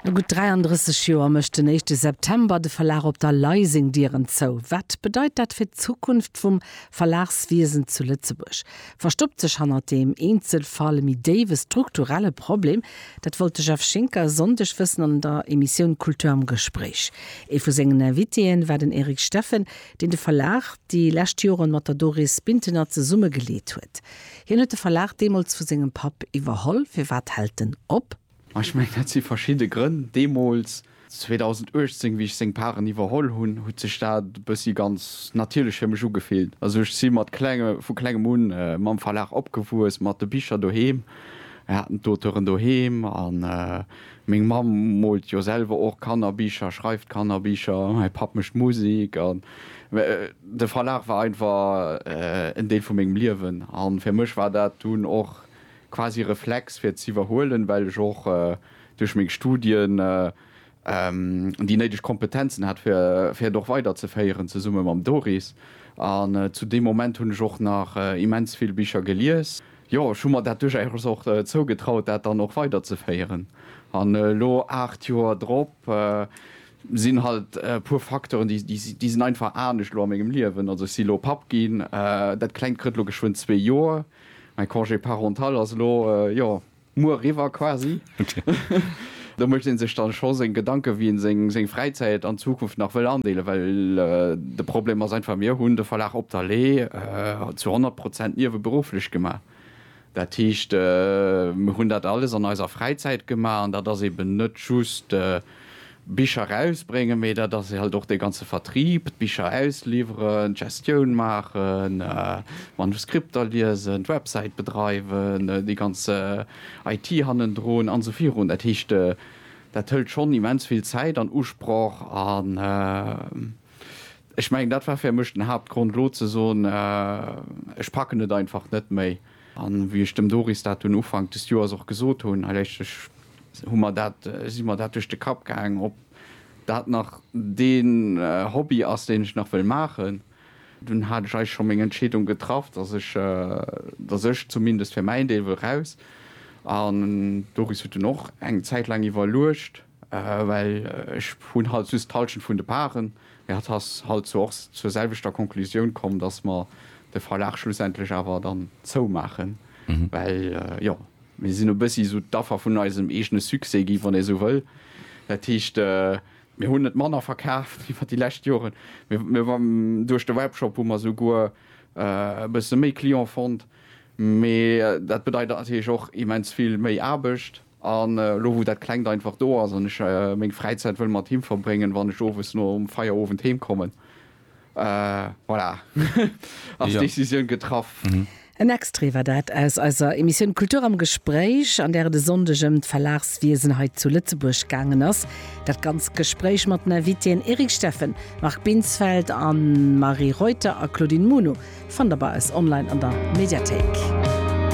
No gutt 33 Joer mécht den éischte September de Verlag op der Lay seng Dieren zou. Wat bedeit dat fir d'Zukunft vum Verlagswiesen zu Lëtzebuerg? Verstoppt sech hannert deem Eenzelfall e méi déiwe strukturelle Problem? Dat wollt de Jeff Schinker e Sonndeg wëssen an der Emissioun Cultur am Gespréich. Ee vu sengen Invitéen war den Eric Steffen, deen de Verlag déi lescht Joren mat der Doris Bintener zesumme geleet huet. Hien huet de Verlag deemools vu sengem Papp iwwerholl. Firwat hält en op? Ech mengen, dat si verschidde Grënn. Deemools, 2018, wéi ech seng Paren iwwerholl hunn, huet sech dat e bëssi ganz natierlech fir mech ugefillt. Also ech si mat klenge, vu klengem un mam Verlag opgewuess, mat de Bicher doheem. Mir haten d'Auteuren doheem a Meng Mamm moolt jo selwer och Kannerbicher, schreift Kannerbicher, mäi Papp mécht Musek. An de Verlag war einfach en Deel vu mengem Liewen. A fir mech war dat dunn och quasi e Reflex, fir et z'iwwerhuelen, well ech och duerch meng Studien déi néideg Kompetenzen hat, fir et och weiderzeféieren, zesumme mam Doris. An zu deem Moment hunn ech och nach immens vill Bicher gelies. Jo, ech hu mer dat duerchaus och zougetraut, dat dann och weiderzeféieren. An elo, aacht Joer drop, sinn halt e puer Facteuren, déi, déi sinn einfach anescht elo a mengem Liewen. Also ech si elo Papp ginn, dat Klengt kritt elo geschwënn zwee Joer, mäi Congé parental ass elo, jo, muer eriwwer quasi. Do mécht ee sech da scho seng Gedanken, wéi ee seng Fräizäit an Zukunft nach wëll andeelen. Well de Problem ass einfach, mir hunn de Verlag Op der Lee zu 100 Prozent nieweberufflech gemaach. Dat heescht, mir hunn dat alles an eiser Fräizäit gemaach. An dat ass eben net just Bicher erausbréngen, mee dat ass halt och dee ganze Vertrib, d'Bicher ausliwweren, d'Gestioun maachen, Manuskripter liesen, d'Websäit bedreiwen, déi ganz IT hannendrun an esou virun. Dat heescht, dat hëlt schonn immens vill Zäit an Usproch an ech mengen, dat war fir mech den Haaptgrond elo ze soen, ech packen et einfach net méi. An wéi ech dem Doris dat dunn Ufank des Joers och gesot hunn, hei lechtlech hu mer dat, si mer dat duerch de Kapp gaangen, ob dat nach deen Hobby ass, deen ech nach wëll maachen. Dunn hat ech eigentlech scho meng Entscheedung getraff, dass ech, dass ech zumindest fir mäin Deel wëll raus. An d'Doris huet dunn och eng Zäit laang iwwerluecht, well ech hunn halt just d'Halschent vun de Parten. Mee hatt ass halt zwar och zur selwechter Konklusioun komm, dass mer de Verlag schlussendlech awer dann zoumaachen, well, jo, mir sinn e bëssi esou d'Affer vun eisem eegene Succès gi, wann ee esou wëll. Dat heescht, Mir hunn net manner verkaaft iwwer déi lescht Joren. Duerch de Webshop hu mer souguer e bësse méi Client fonnt. Mee dat bedeit natierlech och immens vill méi Aarbecht. An elo wou dat Klengt einfach do ass an ech meng Fräizäit wëll mat him verbréngen, wann ech owes nom Feierowend heem kommen, Voilà, ass d'Decisioun getraff. En Extrait war dat aus eiser Emissioun Kultur am Gespréich, an där et e Sonndeg ëm d'Verlagswiesen hei zu Lëtzebuerg gaangen ass. Dat ganzt Gespréich mat den Invitéen Eric Steffen, Marc Binsfeld, Anne-Marie Reuter a Claudine Muno fannt der bei eis online an der Mediathéik.